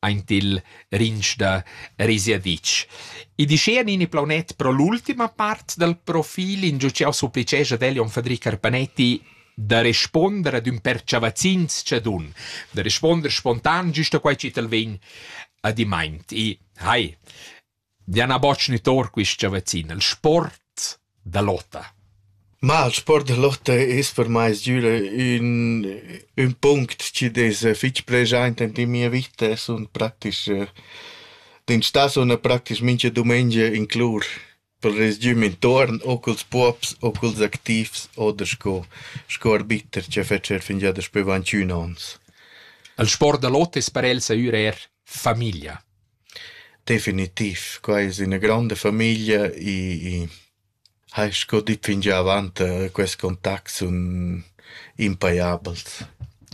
aint il rinch da Risiaditsch. I dischea Nini Plaunet pro l'ultima part dal profil ingio ch'eau supplicesch ad el Jon Fadric Arpanetti da responder ad ün per chavazzin tschadun, da responder spontan, güsta quai chi t'al vegn adimaint. I, hai, Diana Botsch ni tor quista vaccina, il sport da lotta. Ma il sport da lotta es per mai sgüra ün, ün punct chi'd es fich preschaint ant in mia vita, sun praktisch dent sta suna praktisch mincha dumengia in clur per resgüm intuorn o culs puobs o culs activs oder sco sco arbiter cha fetscher fingià daspü avanti ün ons. Il sport da lotta es per els eir famiglia. Definitiv, quai es üna gronda famiglia e e hai sco dit fingià avant quest contact sun impajabels.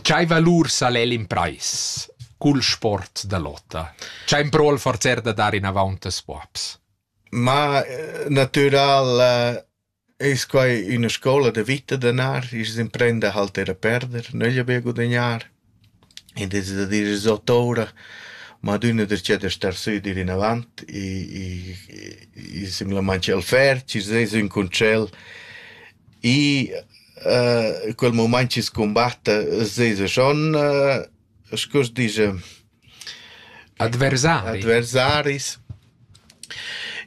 Chai valur sal el imprais cul sport da lotta? Chai ün pro'l forzer da dar inavaunt a scuabs? Ma natüral Es quai üna scoula da vita danar, i's imprenda a halter e perder, nögl be gudagnar. Id es da dir es ot oura, ma adüna darcheu da star sü e dir inavant e e e simplamaing ch'el ferch, i's es ün concel e quel mumaint chi's cumbatta s'esa schon, scu s'disch, Adversaris. Adversaris.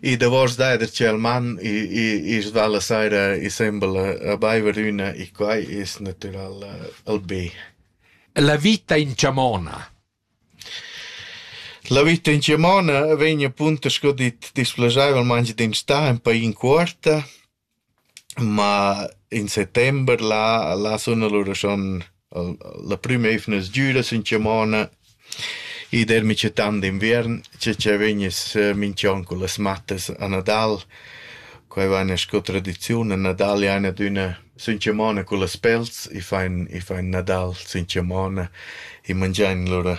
I davos dad ir tschel man i's va la saira i sembla a baiver üna e quai es natüral il be. La vita in chamona. La vita in chamona vegn appunto sco dit displaschaivelmaing d'in stà ün paing cuorta Ma in settember là là sun alura schon la prüma eivna sgüra sün chamona. I dermi cia tant d'inviern, cia cia vegniss minch'on cun las mattas a Nadal. Quai vaina sco tradiziun, a Nadal jaina adüna sün chamona cun las pels, i fain i fain Nadal sün chamona, i mangiain lura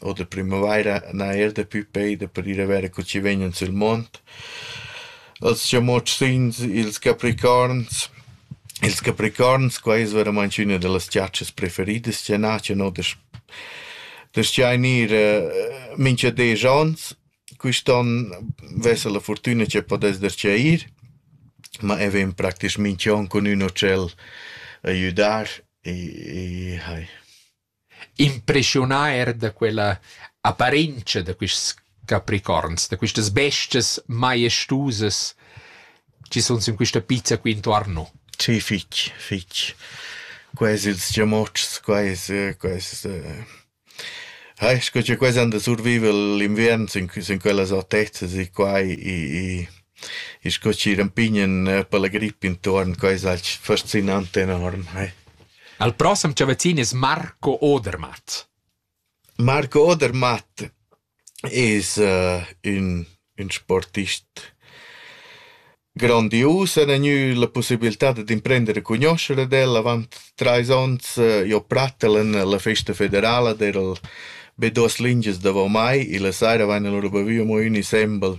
Oter primavaira n'ha eir daplü peida per ir a verer co chi vegnan sül mond. Els chamotschins, ils capricorns. Ils capricorns, qua es veramaing üna da las giatschas preferidas chi n'a, chi no dasch daschain ir mincha desch ons. Quist'on vesa la furtüna chi pudess darcheu ir, ma e ven praktisch mincha on cun ün utschel a güdar e e hai. Impreschiunà eir da quella apparentscha da quists capricorns, da quistas bestias maestusas chi sun sün quista pizza qui intuorn no. Sì, fich, fich. Quais ils giamotschs, quais, quais... Eh, sco cha quai san da surviver l'inviern sün sün quellas autezas e quai i i sco chi rampignan per la gripp intuorn, quai s'ha fascinant enorm, eh. El prossem chavazzin es Marco Odermatt. Marco Odermatt es uh, ün, ün sportist grandius, en gnü la possibilità dad imprender a cugnuoscher ad el avant trais ons. Eh, jo prattel en la festa federala d'eral be duos lingias davo mai e la saira vaina lura bavü amo ün insembel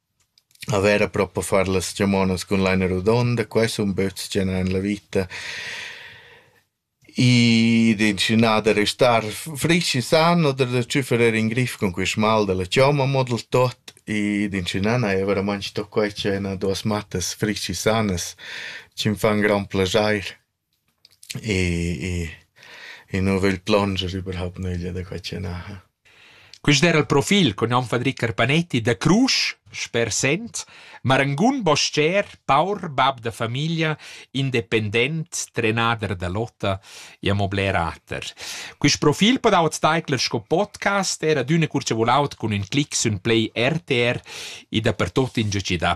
A vera propa far las chamonas cun laina rodonda, quai sun böts chi an la vita. I d'inscenà da restar frisch e san oder da tschüfferer in grif cun quist mal da la chomma mo dal tot. I d'inscenà n'haja veramaing sto quai chi haina duos mattas frisch e sanas, chi'm fan grand plaschair. E e nu vögl plonger überhaupt nöglia da quai chi naja. Quist era il profil cun nom Fadri Carpanetti da Crusch, sper Sent, marangun bostger, paur bab da famiglia, independent, trenader da lotta e amo bler ater. Quist profil podau't taicler sco podcast, era d'üna cur cha voulaut cun ün clic sün play RTR e dapertuot ingià chi dà.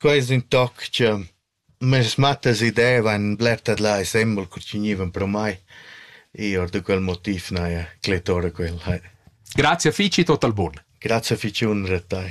Quai es ün toc cha meis mattas idevan bler tadlà e sembel co chi gnivan pro mai. I or da quel motiv n'haja clettora quel. Grazia fich e tot al bun. Grazia fich unra a tai.